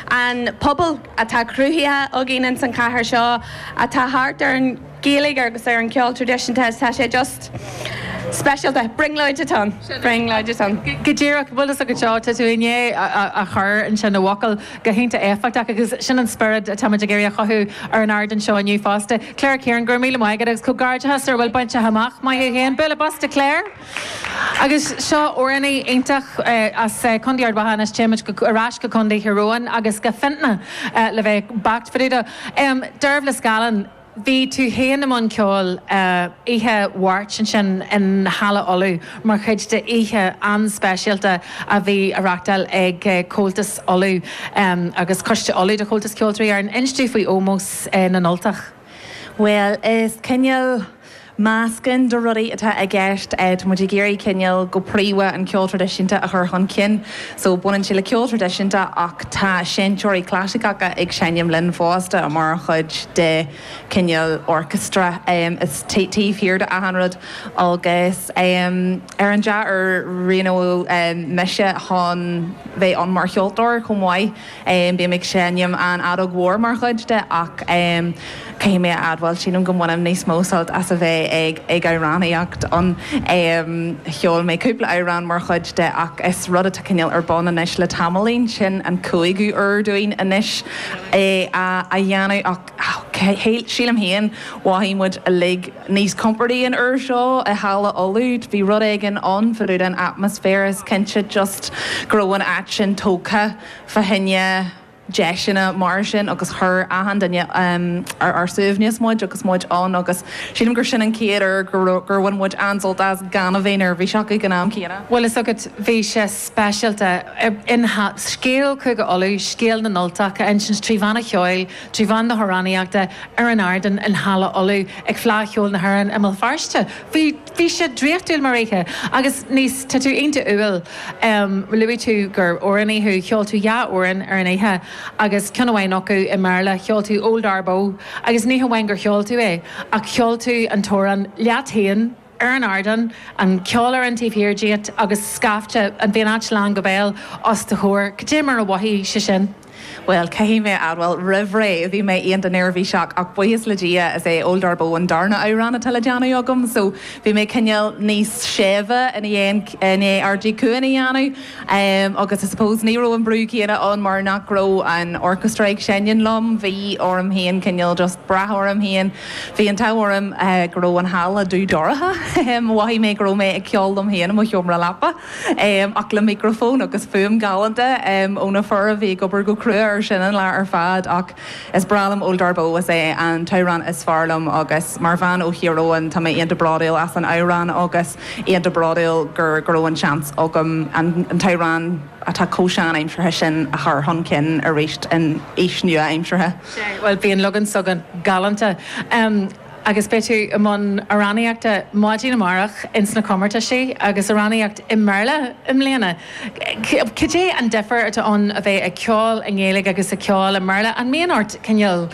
an pobal atá cruthaithe againn ins an chathair seo atá thart ar an Ghaeilge agus ar an gceol traidisiúnta is tá sé just speisialta. Brionglóid atá ann. Brionglóid atá ann. Go díreach. Bhfuil a fhios agat seo, tá tú i ndiaidh a chur ansin i bhfocail go hiontach éifeachtach agus sin an spiorad atáimid ag iarraidh a chothú ar an ardán seo inniu fosta. Claire Kieran, go raibh míle maith agat agus comhghairdeachas ar a bhfuil bainte amach. Maith thú féin. Bualadh bos do Claire. Agus seo amhránaí iontach, as Contae Ard Mhacha anois téimid ar ais go Contae Thír Eoghain agus go Fintona le bheith beacht fá dtaobh de. Dearbhla Scallon, bhí tú féin i mbun ceoil oíche Mháirt ansin i Halla Uladh mar chuid d'oíche an-speisialta a bhí á reáchtáil ag Comhaltas Uladh agus Coiste Uladh de Chomhaltas Ceoltóirí Éireann, inis dúinn faoi Ómós na nUltach. Bhuel, is cineál meascáin de rudaí atá i gceist. Tá muid ag iarraidh cineál, go príomha, an ceol traidisiúnta a chur chun cinn. So, baineann sé le ceol traidisiúnta ach tá seinnteoirí clasaiceacha ag seinm linn fosta mar chuid de cineál orchestra taobh thiar de achan rud. Agus ar an dea-uair, roghnaíodh mise chun bheith ann mar cheoltóir chomh maith. Bím ag seinm an fheadóg mhór mar chuid de ach caithfidh mé a admháil, sílim go mbainim níos mó sult as a bheith ag amhránaíocht ann. Cheol mé cúpla amhrán mar chuid de ach is rud atá cineál ar bun anois le tamaillín, sin an cúigiú huair dúinn anois é a dhéanamh ach sílim féin, mhothaigh muid uilig níos compordaí an uair seo i Halla Uladh, bhí rud éigin ann fá dtaobh den atmaisféar, is cinnte just go raibh an áit sin tógtha. fá choinne deiseanna mar sin agus chuir achan duine ar ár suaimhneas muid agus muid ann agus sílim gur sin an chéad uair gur bhain muid an-sult as gan a bheith neirbhíseach ag an am céanna. Bhfuil a fhios agat, bhí sé speisialta. In scéal Chúige Uladh, scéal na nUltach á insint trí mheán an cheoil, trí mheán na hamhránaíochta, ar an ardán i Halla Uladh, ag Fleadh Cheoil na hÉireann i mBéal Feirste, bhí. Bhí sé draíochtúil mar oíche. Agus anois, tá tú iontach umhal. Luaigh tú gur amhránaí thú. Cheol tú dhá amhrán ar an oíche agus ceann amháin acu i mBéarla. Cheol tú Old Ardboe agus ní hamháin gur cheol tú é ach cheol tú an t-amhrán leat féin ar an ardán, an cheolfhoireann taobh thiar díot agus scaifte, bhí an áit lán go béal, os do chomhair. Cad é mar mhothaigh sé sin? Bhuel, caithfidh mé a admháil, roimh ré, bhí mé iontach neirbhíseach, ach buíochas le Dia, is é Old Ardboe an darna amhrán atá le déanamh agam, so bhí mé cineál níos séimhe ina dhiaidh, i ndiaidh Ardaí Cuain a dhéanamh. Agus I suppose, ní raibh an brú céanna ann mar nach raibh an orchestra ag seinm liom, bhí orm féin cineál just brath orm féin. Bhí an t-ádh orm go raibh an halla dubh dorcha, mhothaigh mé go raibh mé ag ceol liom féin i mo sheomra leapa. Ach le micreafón agus fuaim galánta ó na fir a bhí ag obair go crua air sin an lá ar fad. Ach is breá liom Old Arboe, is é an t-amhrán is fearr liom agus mar bhean ó Thír Eoghain tá mé iontach bródúil as an amhrán agus iontach bródúil gur go raibh an seans agam an t-amhrán atá chomh sean-aimseartha sin a chur chun cinn arís san aois nua-aimseartha. Sea, bhuel bhí an leagan s'agaibh galánta. Agus beidh tú i mbun amhránaíochta maidin amárach ins na comórtaisí, agus amhránaíocht i mBéarla i mbliana. Cad é an difear atá ann a bheith ag ceol i nGaeilge agus ag ceol i mBéarla? An mbíonn ort cineál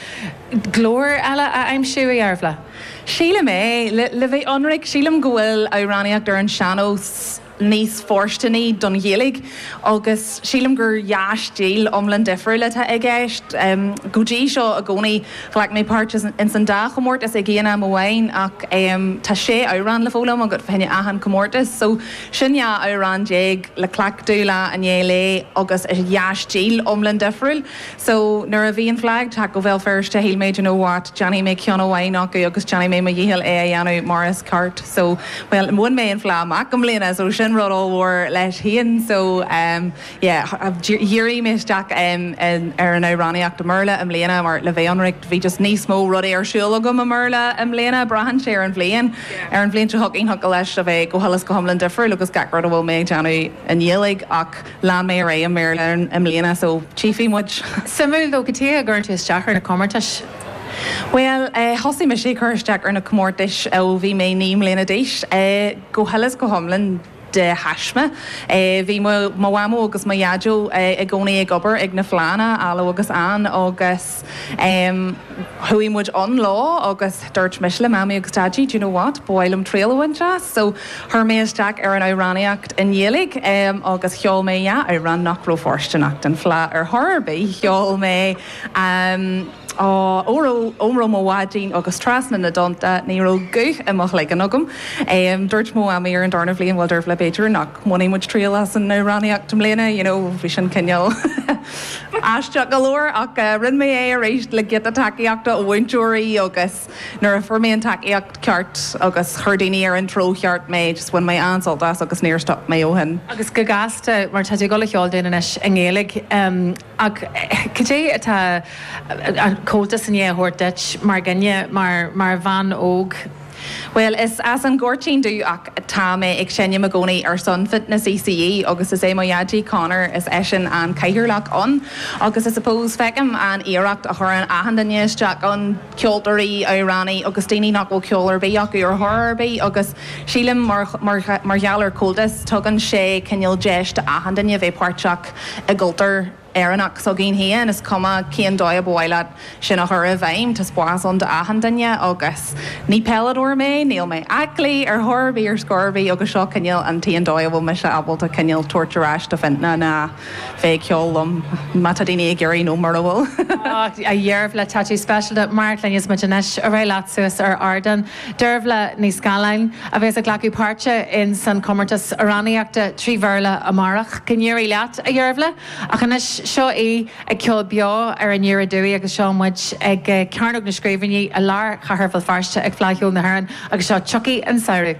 glór eile a aimsiú, a Dhearbhla? Sílim é. Le bheith ionraic, sílim go bhfuil amhránaíocht ar an sean-nós. níos fóirsteanaí don Ghaeilge agus sílim gur dhá stíl iomlán difriúil atá i gceist. Go dtí seo i gcónaí, ghlac mé páirt ins an dá chomórtas ag aon am amháin ach tá sé amhrán le foghlaim agat fá choinne achan comórtas so sin dhá amhrán déag le cleachtadh lá i ndiaidh lae agus is dhá stíl iomlán difriúil. So, nuair a bhí an Fhleadh ag teacht go Béal Feirste shíl mé, do you know what, déanfaidh mé ceann amháin acu agus déanfaidh mé mo dhícheall é a dhéanamh mar is ceart. So, bhuel, bhain mé an fhleá amach i mbliana, so sin rud ollmhór leis féin. So, em, yeah, dhírigh mé isteach, em, ar an amhránaíocht i mBéarla i mbliana mar le bheith ionraic, bhí just níos mó rudaí ar siúl agam i mBéarla i mbliana, braitheann sé ar an bhliain. Ar an bhliain seo chugainn thig leis a bheith go huile is go hiomlán difriúil agus gach rud a bhfuil mé ag déanamh i nGaeilge ach, Lean mé ar aghaidh i mBéarla i mbliana so tchífidh muid! Suimiúil cad chuige a gcuireann tú isteach ar na comórtais? Bhuel, thosaigh mise ag cur isteach ar na comórtais ó bhí mé naoi mbliana d'aois, go huile is go hiomlán de thaisme. Bhí mo mhamó agus mo dhaideo i gcónaí ag obair ag na fleánna, Alu agus Ann, agus. Chuaigh muid ann lá agus dúirt mise le Mamaí agus Daidí, do you know what, ba mhaith liom triail a bhaint as. So, chuir mé isteach ar an amhránaíocht i nGaeilge agus cheol mé dhá amhrán nach raibh fóirsteanach don Fleá ar chor ar bith. Cheol mé, aw, Óró, Óró mo Bháidín agus Trasna na dTonnta. Ní raibh guth i mo chloigeann agam. Dúirt mo Mhamaí ar an darna bhliain, bhuel, Dearbhla b'fhéidir nach mbainfidh muid triail as an amhránaíocht i mbliana, you know, bhí sin cineál. Aisteach go leor, ach rinne mé é arís le giota tacaíochta ó mhúinteoirí agus nuair a fuair mé an tacaíocht cheart agus chuir daoine ar an treo cheart mé, just bhain mé an-sult as agus níor stop mé ó shin. Agus go gasta, mar tá tú ag dul a cheol dúinn anois i nGaeilge, ach cad é atá Comhaltas i ndiaidh a thabhairt duit mar dhuine, mar bhean óg? Bhuel, is as an Ghoirtín domh ach tá mé ag seinm i gcónaí ar son Fintona CCÉ agus is é mo Dhaidí, Conor, is eisean an cathaoirleach ann agus I suppose feicim an iarracht a chuireann achan duine isteach ann, ceoltóirí, amhránaithe agus daoine nach bhfuil ceol ar bith acu ar chor ar bith agus sílim mar gheall ar Comhaltas tugann sé cineál deis do achan duine bheith páirteach i gcultúr Éireannach s'againn féin, is cuma cén dóigh a ba mhaith leat sin a chur i bhfeidhm, tá spás ann do achan duine agus ní peileadóir mé, níl mé aclaí ar chor ar bith ar scor ar bith agus seo cineál an t-aon dóigh a bhfuil mise ábalta cineál tabhairt ar ais do Fintona ná bheith ag ceol liom má tá daoine ag iarraidh nó mura bhfuil. Dhearbhla, tá tú speisialta, Mark, le níos mó de anois, ar aghaidh leat suas ar ardán. Dearbhla Ní Scalláin, a bhéas ag glacadh páirte in san comórtas amhránaíochta trí Bhéarla amárach, go n-éirí leat, a Dhearbhla, ach anois seo í ag ceol beo ar an aer dúinn agus seo muid ag cearnóg na scríbhinní i lár chathair Bhéal Feirste ag Fleadh Cheoil na hÉireann agus seo Tiocfaidh an Samhradh.